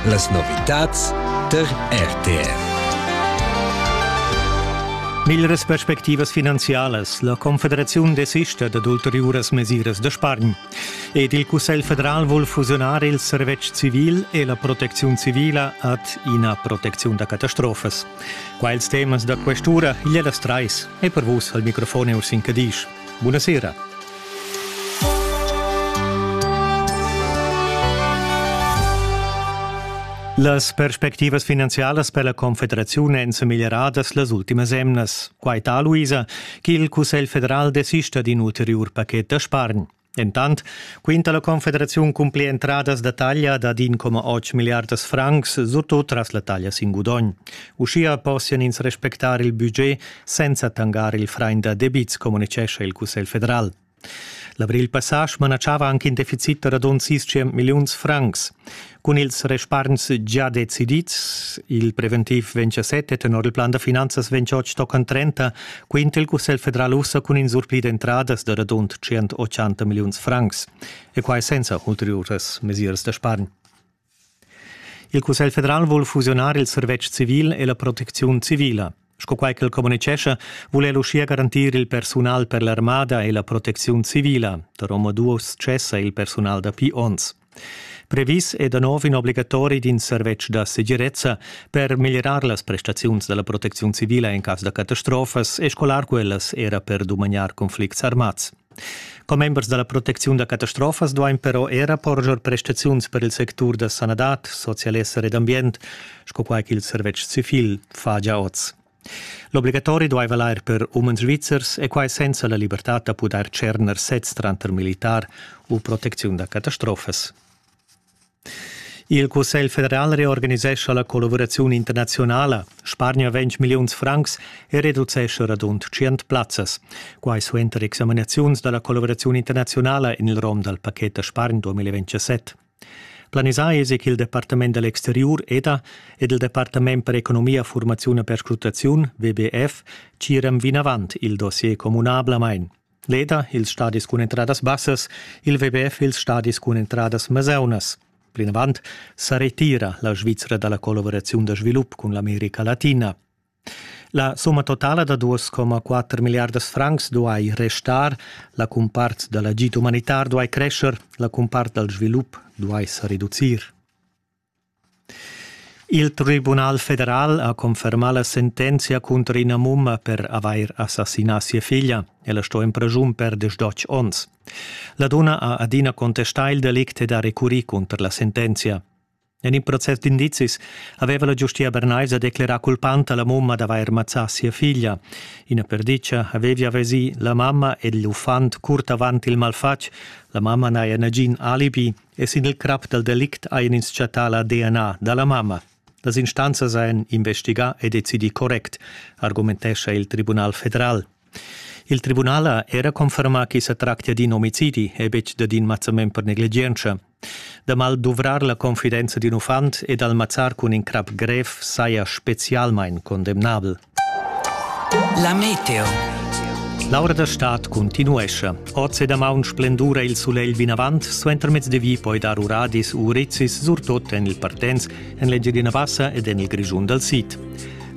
Las novitads tar RTR. Miglras perspectivas finanzialas. La Confederaziun desista dad ulteriuras mesiras da spargn. Ed il Cussegl federal vul fusionar il servetsch civil e la protecziun civila ad ina protecziun da catastrofas. Quels temas da quest'ura, igl las trais, e per vus al microfon è Ursin Cadisch. Bunasera. Las perspectivas finanzialas per la Confederaziun èn sa meglieradas las ultimas emnas. Quai ta, Luisa, ch'il Cussegl federal desista d'in ulteriur paket da spargn. Entant quinta la Confederaziun cun pli entradas da taglia dad 1,8 milliardas francs, surtut tras la taglia sin gudogn. Uschia possian ins respectar il budget senza tangar il frain da debits, communitgescha il Cussegl federal. L'avril passà smanatschava anche in deficit da radund 600 milliuns francs. Cun ils respargns già decidids, il preventiv vegn a sette, tenor il plan da finanzas vegn oz toccant 30, quinta il Cussegl federal ussa cun in surpli d'entradas da radund 180 milliuns francs. E quai senza ulteriuras mesiras da spargn. Il Cussegl federal vul fusionar il servetsch civil e la protecziun civila. Sco quai ch'el communitgescha, vul el uschia garantir il persunal per l'armada e la protecziun civila. Da omaduos cessa il persunal dapi onns. Previs è da nov in obligatori d'in servetsch da segirezza per miglierar las prestaziuns da la protecziun civila en cas da catastrofas e scolar quellas era per dumagnar conflicts armats. Commembers da la protecziun da catastrofas duain però era porscher prestaziuns per il sectur da sanadad, socialesser ed ambient, sco quai ch'il servetsch civil fa gia oz. L'obligatori duai valair per umens svizzers e quai senza la libertad da pudair tscherner sez tranter militar u protecziun da catastrofas. Il Cussegl federal reorganisescha la collavuraziun internaziunala, spargna 20 milliuns francs e reducescha radund 100 plazzas. Quai suenter examinaziuns da la collavuraziun internaziunala en il rom dal pacchet da spargn 2027. Planisà esi ch'il Departament da l'exteriur EDA ed il Departament per economia, formaziun e perscrutaziun WBF tgiran vinavant il dossier communablamain. Leda ils stadis cun entradas bassas, il WBF ils stadis cun entradas meseunas. Plinavant sa retira la Svizzera dalla collaboraziun da svilup cun l'America Latina. La somma totala da 2,4 miliardas francs duai restar, la cumpart dal agid umanitar duai crescer, la cumpart dal svilup duai sa reducir. Il tribunal federal ha confermà la sentenzia cunter ina mumma per avair assassinà sia figlia. Ella sto en praschun per diesch onns. La dunna ha adina contestà il delict ed ha recurrì cunter la sentenzia. En in process d'indizis aveva la giustia bernaisa declerà culpanta la mumma d'avair mazzà sia figlia. Ina perditga avevia vesì la mamma ed l'uffant curt avant il malfatg. La mamma n'haja nagin alibi e sin il crap dal delict hajan ins chattà la DNA da la mamma. Las instanzas hajan investigà e decidì correct, argumentescha il Tribunal federal. Il tribunal ha era confermà ch'i sa tractia d'in omicidi e betg dad in mazzament per negligientscha. Da mal duvrar la confidenza d'in uffant e d'al mazzar cun in crap grev saja spezialmain condemnabel. La meteo. L'aura da stad continuescha. Oz e damaun splendura il sulegl vinavant, suentermezz de vi poi dar uradis u urezis, surtot en il Partens, en l'Engiadina Bassa ed en il Grischun dal Sid.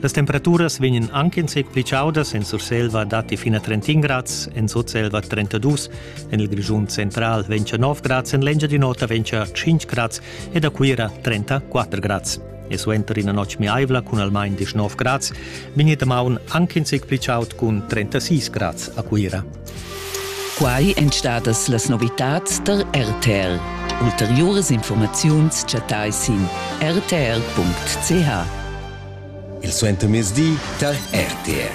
Las temperaturas vegnan anche in sec pli chaudas, en Surselva datti fino a 31 grads, en Sutselva 32, en il Grischun central 29 grads, en l'Engiadin'Ota 25 grads ed a Cuira 34 grads. e suenter ina notg miaivla cun almain 19 grads vegni damaun anc in zic pli chaud cun 36 grads a Cuira. Quai èn stadas las novitads tar RTR. Ulteriuras informaziuns chattai sin rtr.ch. Il suentermezdi tar RTR.